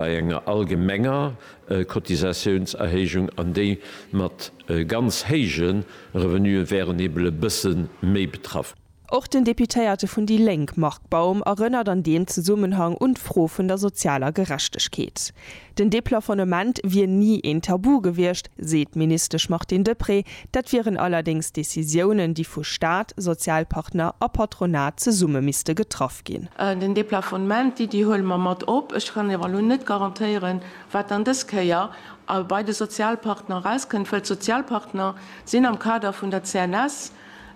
bei enger allgemenger Cotisatiounserhéijung, an déi mat ganz héije Revenuë wären eben e bësse méi betraff. Och den Deputéierte vun déi Lénk Marc Baum erënnert an deem Zesummenhang un d'Fro vun der sozialer Gerechtegkeet. Den Deplafonnement wier ni een Tabu gewiescht, seet d'Ministesch Martine Deprez, Dat wieren allerdéngs Decisiounen, déi vu Staat, Sozialpartner a Patronat zesumme misste getraff ginn. Den Deplafonnement, d'Iddi huele mer mat op. Ech kann awer elo net garantéieren, wat dann dës Kéier bei de Sozialpartner erauskënnt, well d'Sozialpartner sinn am Kader vun der CNS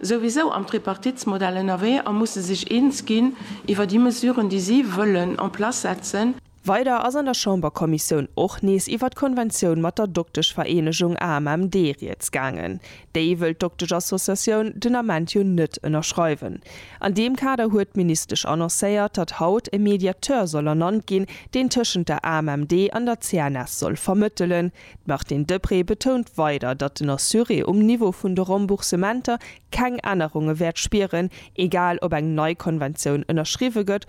souwisou am Tripartitsmodell ënnerwee a musse sech eens ginn iwwer déi Mesuren, déi si wëllen en place setzen. Weider ass an der Chamberkommissioun och nees iwwert d'Konventioun mat der Dokteschvereenegung AMMD rieds gaangen. Déi wëll d'Dokteschassociatioun den Ament jo net ënnerschreiwen. An deem Kader huet d'Ministesch annoncéiert, datt haut e Mediateur soll ernannt ginn, deen tëschent der AMMD an der CNS soll vermëttelen. D'Martine Deprez betount weider, datt den Assuré um Niveau vun de Remboursementer keng Ännerunge wäert spieren, egal ob eng nei Konventioun ënnerschriwwe gëtt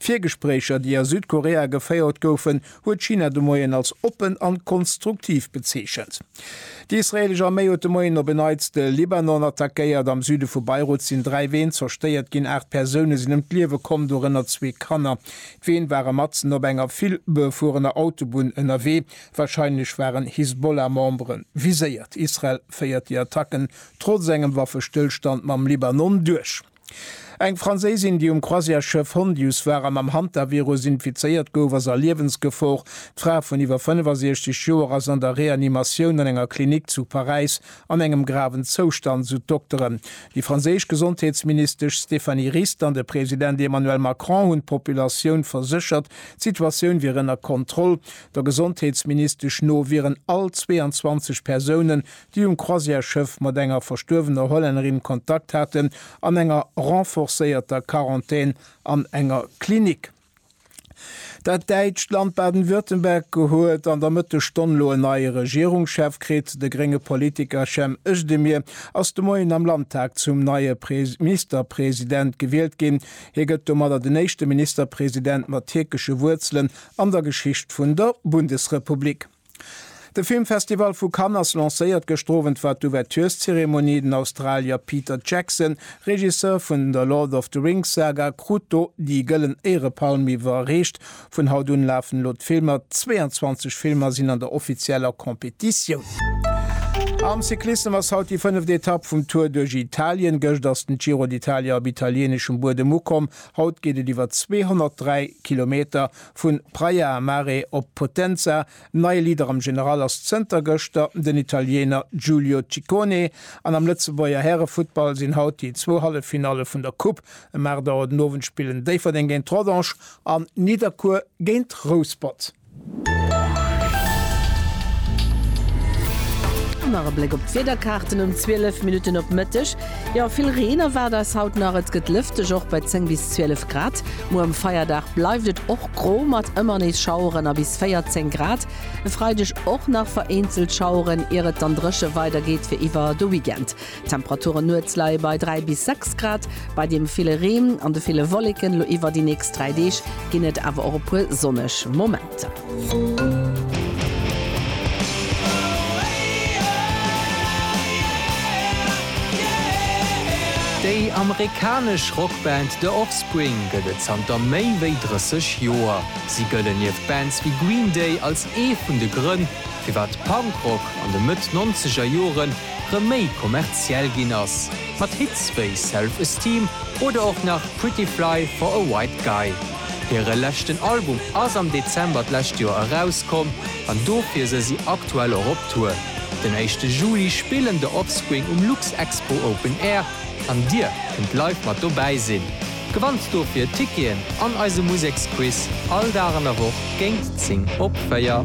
D'Virgespréicher, déi a Südkorea geféiert goufen, huet China de Moien als oppen an konstruktiv bezeechent. Déi israeelesch Arméi huet de Moien op en Neits de Libanon attackéiert. Am Süde vu Beirut sinn dräi Ween zerstéiert ginn, aacht Persoune sinn ëm d'Liewe komm, dorënner zwee Kanner. D'Ween ware matzen op enger vill befuerener Autobunn ënnerwee. Warscheinlech waren Hisbollah-Membere viséiert. Israel féiert déi Attacken trotz engem Waffestëllstand mam Libanon duerch. Eng Franséisin, déi um Croisièresschëff Hondius war a mam Hantavirus infizéiert gouf, ass a Liewensgefor. D'Fra vun iwwer 65 Joer ass an der Reanimatioun an enger Klinik zu Paräis an engem graven Zoustand, sou d'Dokteren. Déi franséisch Gesondheetsministesch Stéphanie Rist an de President Emmanuel Macron hunn d'Populatioun verséchert, d'Situatioun wier ënner Kontroll. Der Gesondheetsministesch no wieren all 22 Persoune déi um Croisière-Schëff mat enger verstuerwener Hollännerin Kontakt haten, an enger renforcéierter Quarantän an enger Klinik. Dat däitscht Land Baden-Württemberg huet an der Mëttesstonn elo en neie Regierungschef kritt. De grénge Politiker Cem Özdemir ass de Moien am Landtag zum neie Ministerpresident gewielt ginn. Hie gëtt domadder den éischte Ministerpresident mat tierkesche Wuerzelen an der Geschicht vun der Bundesrepublik. De Filmfestival vu Cannes ass lancéiert. Gëschter Owend war d'Ouvertureszeremonie. Den Australier Peter Jackson, Regisseur vun der Lord of the Rings Saga, krut do déi Gëllen Éierepalm iwwerreecht. Vun haut un lafen elo d'Filmer. 22 Filmer sinn an der offizieller Competitioun. Am Cyclissem ass haut déi fënneft Etapp vum Tour duerch Italien. Gëscht ass den Giro d'Italia op italieneschem Buedem ukomm. Haut geet et iwwer 203 Kilometer Vun Praia a Mare op Potenza, nei Leader am General ass zënter gëschter den Italiener Giulio Ciccone an am Lëtzebuerger Härefuttball sinn haut déi zwou Halleffinalle vun der Coupe. Ëm 8 Auer den Owend spillen Déifferdeng géint Rodange an Nidderkuer géint Rouspert. An nach e Bléck op d'Wiederkaarten um 12 Minutten op Mëtteg. Jo, vill Reen erwaart eis haut nach. Et gëtt lëfteg, och bei 10 bis 12 Grad. Muer um Feierdag bleift et och gro mat ëmmer nees Schaueren a bis 14 Grad. E Freideg och nach vereenzelt Schaueren, ier et dann dréche weidergeet fir iwwer de Weekend. D'Temperaturen nuets leie bei 3 bis 6 Grad. Bei deem ville Reen an de ville Wolleken elo iwwer déi nächst 3 Deeg ginn et awer och e puer sonneg Momenter. Zap. Déi amerikanesch Rockband The Offspring gëtt et zanter méi wéi 30 Joer. Si gëllen nieft Bands wéi Green Day als ee vun de Grënn, firwat Punkrock an de Mëtt-Nonzeger Jore rëm méi kommerziell ginn ass, mat Hits wéi Self Esteem oder och nach Pretty Fly for a White Guy. Hire leschten Album ass am Dezember d'lescht Joer erauskomm an dofir se si aktuell och op Tour. Den éischte Juli spillen The Offspring um Luxexpo Open Air an Dir kënnt live mat dobäi sinn. Gewannt dofir Ticketen an eise Museksquiz all Dag an der Woch géint 10 op 4.